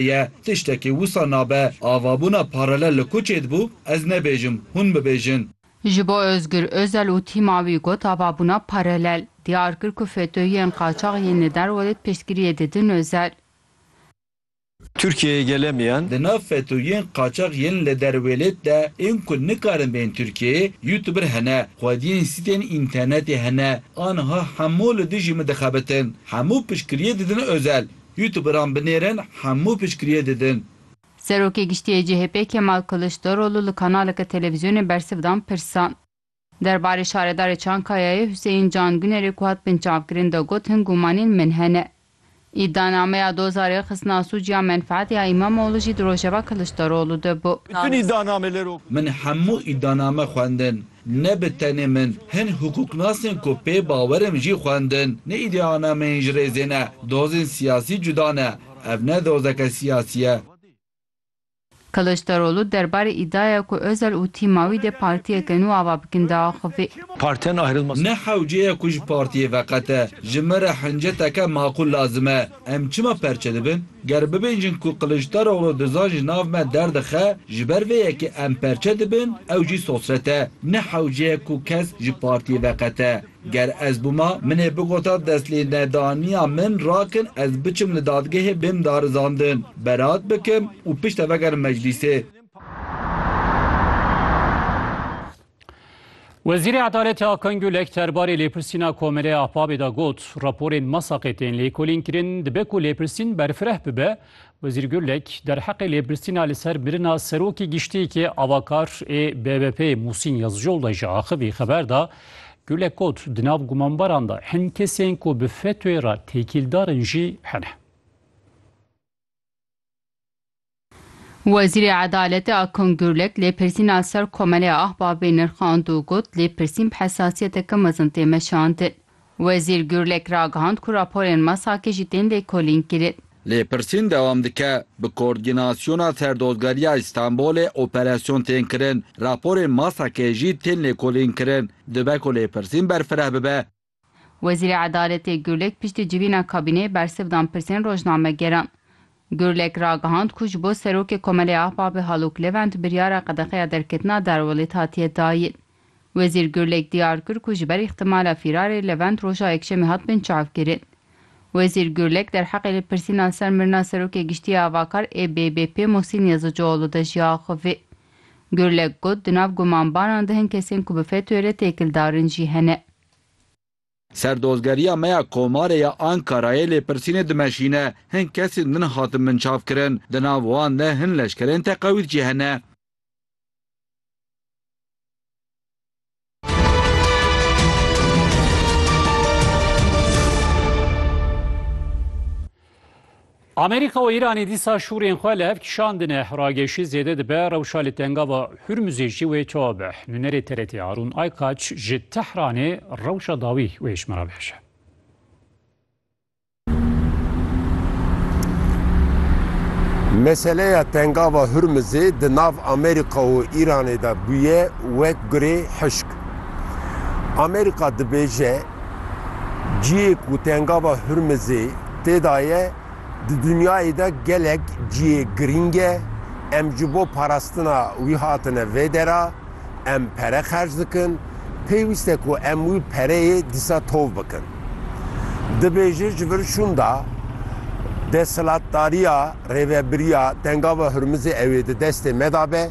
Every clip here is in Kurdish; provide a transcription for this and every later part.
ye. Tiştekî wisa nabe. Avabûna paralel li ku çêdibû, ez nebêjim, hûn bibêjin. Ji bo Ozgur Ozel û tîma wî got avabûna paralel, diyar kir ku FETÖ'yên qaçax yên li derwedê piştgiriyê didin Ozel. Tirkiyeyê gele mi yen? Di nav FETÖ'yên qaçax yên li derwêlêt de ên ku nikarin bên Tirkiyeyê, youtuber hene, xwediyên sîtên înternetê hene, aniha hemû li dijî min dixebitin. Hemû piştgiriyê didin Ozel. Youtuberan binêrin hemû piştgiriyê didin. Serokê Giştî yê CHP'ê Kemal Kiliçdaroglu li kanaleke televîzyonê bersiv dan pirsan. Derbarê şaredarê Çankayayê Huseyîn Can Gunerê ku hat binçavkirin de got hin gumanên min hene. Îdianameya doza rêxistina sûc ya menfeet ya Îmamoğlu jî di rojeva Kiliçdaroglu de bû. Min hemû îdianame xwendin. Ne bi tenê min, hin hukûknasên ku pê bawer im jî xwendin. Ne îdeanameyên ji rêzê ne, dozên siyasî cuda ne. Ev ne dozeke siyasî ye. Kiliçdaroglu derbarê îdiaya ku Ozel û tîma wî dê partiyeke nû ava bikin diaxivî. Partiyan ayrılmasın. Ne hewceye ku ji partiyê veqete. Ji min re hinceteke maqûl lazim e. Em çima perçe dibin? Ger bibêjin ku Qiliçdaroglu dizan ji nav me derdixe, ji ber vê yekê em perçe dibin, ew jî sosret e. Ne hewceyek ku kes ji partiyê veqete. Ger ez bûma, min ê bigota destlênedaniya min rakin ez biçim li dadgehê bêm darizandin, beraat bikim û piştre vegerim meclîsê. Wezîrê Edaletê Akan Gulek derbarê lêpirsîna Komelê Ahbabê de got, raporên Masaqê tên lêkolînkirin, dibe ku lêpirsîn berfireh bibe. Wezîr Gulek derheqê lêpirsîna li ser mirina Serokê Giştiyekê Avakar ê BBP'ê Musîn Yazicol de ji axivî xeber da. Gulek got, di nav gumanbaran de hin kesên ku bi FETÖ'ê re têkîldar in jî hene. Wezîrê Edaletê Akung Gurlek lêpirsîna ser Komelê Ahbabê nirxand û got, Lêpirsîn bi hesasiyeteke mezin tê meşandin. Wezîr Gurlek ragihand ku raporên MESAK'ê jî tên lêkolînkirin. Lêpirsîn dewam dike, Bi Koordînasyona Serdozgeriya Îstanbulê operasyon tên kirin, raporên MESAK'ê jî tên lêkolînkirin. Dibe ku lêpirsîn berfireh bibe. Wezîrê Edaletê Gurlek piştî civîna kabîneyê bersiv dan pirsên rojnamegeran. Gurlek ragihand ku ji bo Serokê Komelê Ahbabê Halûk Levent biryara qedexeya derketina Derwelêt hatiye dayîn. Wezîr Gurlek diyar kir ku ji ber îxtîmala fîrarê Levent roja Yekşemê hatibin çavkirin. Wezîr Gurlek derheqê lêpirsîna ser mirina Serokê Giştî ya Avakar ê BBP'ê Muhsîn Yazıcıoğlu de jî axivî. Gurlek got di nav gumanbanan de hin kesên ku bi FETÖ'ê re têkildarin jî hene. Serdozgeriya me ya Komarê ya Ankarayê lêpirsînê dimeşîne, hin kesên din hatin binçavkirin, di nav wan de hin leşkerên teqewît jî hene. Amerîka û Îranê dîsa şûrên xwe li hev kişandine. Rageşî zêde dibe, rewşa li tengava Hurmuzê jî wê çawa be. Nûnerê TRT'ê Harûn Aykaç ji Tehranê rewşa dawî wê ji min re bihişe. Meseleya tengava Hurmuzê di nav Amerîka û Îranê de bûye wek gurê hişk. Amerîka dibêje, Ciyê ku tengava Hurmizê tê de ye, di dinyayê de gelek ciyê girîng e. Em ji bo parastina wî hatine vê dera, em pere xerc dikin, pêwîst e ku em wî pereyê dîsa tov bikin. Dibêje ji vir şûnda desthilatdariya Rêvebiriya Tengava Hurmizê ew ê di destê me de be.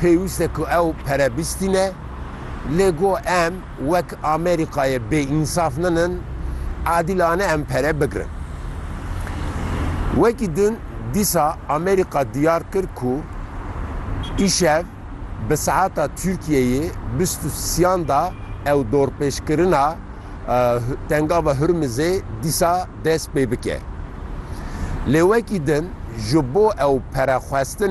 Pêwîst e ku ew pere bistîne, lê go em wek Amerîkayê bêînsaf nenin, adîlane em pere bigirin. Wekî din dîsa Amerîka diyar kir ku îşev bi saeta Tirkiyeyê bîst û sîyan da ew dorpêçkirina Tengava Hurmizê dîsa dest pê bike. Lê wekî din ji bo ew pere xwestinê,